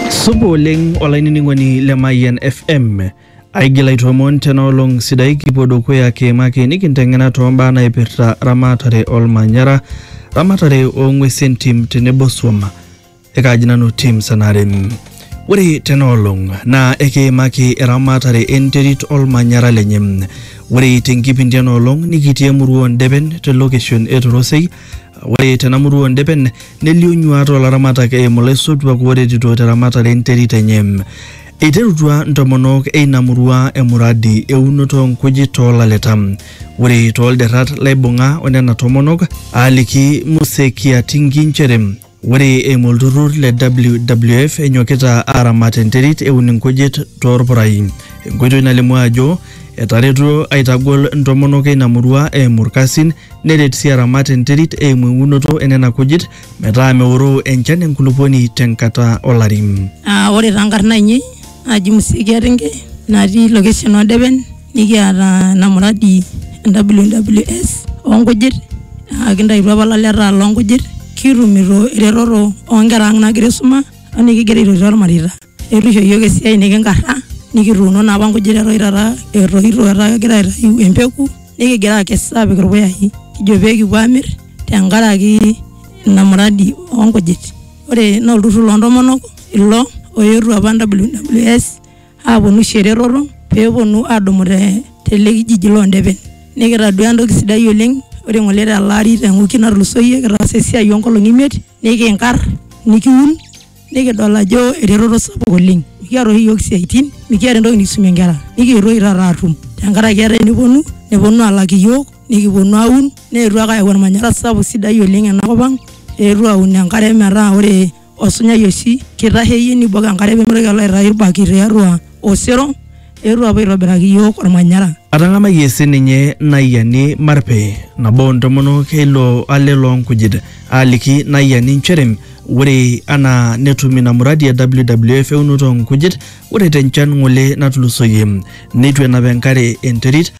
Supa oleng olainining'oni le Mayian FM. Aigil aitoomon tena olong sidai kipuo dukuya kiimaki nikinteng'ena toombaa naipirta ramatare olmanyara, ramatare oong'uesi entim tenebo swam. Ekaaji nanu Tim Sanare. Ore tena olong naa ekiimaki eramatare enterit olmanyara lenye. Ore tenkipindi ena olong nikitii emurua oo Ndepen te location e Torosei Ore tena murua oo Ndepen nelio nyuaat oo laramatak eimu laisotuak ooretito te ramatare e nterit enye. Eiterutua ntomonok e ina murua emuradi e unoto oo nkujit too laleta. Ore too lderrat laibung'a o nena tomonok aaliki Muse Kiatingi nchere, Ore eimu olturrur le WWF enyokita aaramat enterit eun inkujit toorpurai. Enkoitoi nalimu ajo etaretuo aitagol ntomonok eina murua eimu ilkasin neret sii aramat enterit eimu eunoto enena kujit metaa meoroo enchan enkulupuoni tenkata olari. Ore taa nkarn aainei naji Musikia Ringe natii location oo Depen nikiata ina muradi e WWS oo nkujit aa kintaituo apa ilaleta loo nkujit kitumito eretoto oo nkera ang' naagira aisuma o nikigira aitotio irmareita. Eitu isho iyiok esiai nikinkarra nikituuno naa apa nkujit eton taata etoito etaa kegira aitayu empeku nikigira aakes aapik irpuyai kijo pee kipuo aamir tenkaraki ina muradi oo nkujit. ore naa olturrur loontomonok ilo oetuo apa WWS aponu aisho eretoto peeponu adumu te tele kijiji londepen nikitadua entoki sidai oleng ore ng'ole tele ari te wiki natulusoyie kitaasa esiai onkolong'i imiet nikinkarr nikiun nikidol ajo eretoto sapuk oleng mikiata oshi iyiok isiaitin mikiata entoki nikisumie inkera nikietuo oshi taata atum tenkaraki etaa eneponu neponu alak iyiok nikiponu aun. neetuo ake ayau ormanyara sapuk sidai oleng ena kop ang eetuo aun enkare metaa ore osunyai oshi kitasheyie nibok enkare pemitoki alo aitayu irbakit tiatua osero eetuo apuo aitobiraki iyiok ormanyara. Atang'amayie sininye Naayiani Marpe, nabo oo ntomonok e ilo ale loo nkujit, aaliki Naayiani nchere ore anaa netum ina muradi e WWF eunoto oo nkujit, ore te nchan ng'ole natulusoyie neitu enap enkare enterit,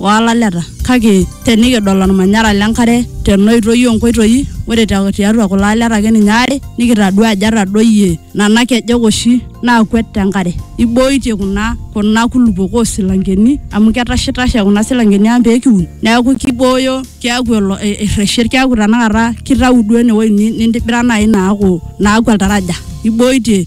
o laleta. Kake tenikidol olmanyara le nkare tena oitoi oo nkoitoi, ore tiatua kulo aleta ake ninye aare nikitadua ajo etadoyie nena kejek oshi naakwet te nkare. Eiboitie kuna kuna kulupuok oo silankeni amu ketashitashe kuna silankeni ang pee kiun niaku keibooyo keaku erreshie keaku tenakata keitayu duo ene wueji nintibira naaji naaku naaku oltaraja. Eiboitie.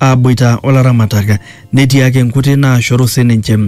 aaboita o laramatak netii ake nkuti naashoru sininche.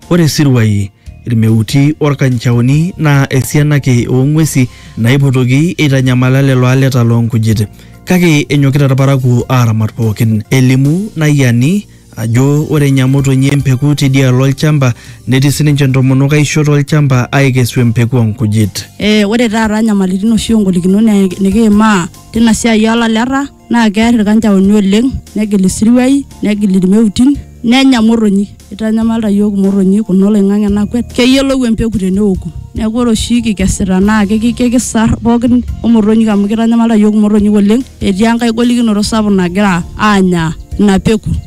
Ore isiruai, ilmeuti o lkanchaoni naa esiana ake oo ng'uesi naipotoki eitanyamala lelo aleta loo nkujit. Kake enyokita ilparakuo aaramat pooki. Elimu Nayiani ajo ore enya motonyi empeku teidialo olchamba netii sininche ntomonok aisho to lchamba aaikesu empeku oo nkujit. Ore taata nyamalitin oshi o ngolikinot nikiimaa teina siai oo laleta. naa kear ilkanjaoni oleng negil isiruai negil ilmeutin nenya motonyi eitanyamalita iyiook imotonyi kuna oloing'ang'e nakwet keyiolou empeku teneoku neeku ore oshi kikesita naa kiki- kikisar pookin omotonyik amu keitanyamalita iyiook imotonyik oleng etii enkae golikinoto sapuk nagira aanya ina peku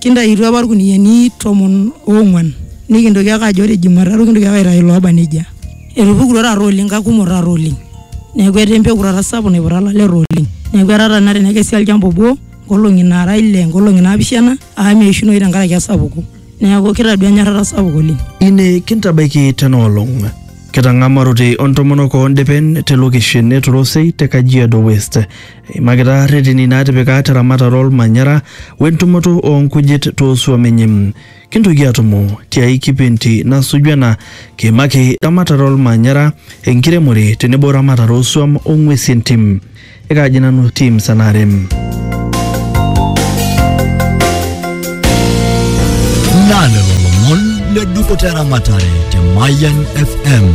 Kintaituo apa ilkuniyiani tomon oong'uan nikintoki ake ajo ore Jumatatu kintoki ake aitayu looba nejia. Etupukutuo taata oleng kakumok taata oleng. Neeku etaa empeku taata sapuk naiputa ilaleta oleng. Neeku etaa tenakata tenekesi olchamba obo nkolong'i naara ile, nkolong'i naapishana amu meishunoyu tenkaraki esapuko. Neeku kitadua enyorrata sapuk oleng. Ine kintabaiki tena olong. Kitang'amarote o ntomonok oo ndepen te lokeshen e Torosei te Kajiado West. Eimakita rreteni naatipika te ramatare o lmanyara o entumoto oo nkujit too suom inyi. Kintoki aatumo ti ai kipindi nasuju ena kiimaki ramatare o lmanyara, enkiremore tenebo ramatare oo suom o ng'uesi e ntim. Ekaaji nanu Tim Sanare. Naa lelo lomon le dupoto e ramatare te Mayian FM.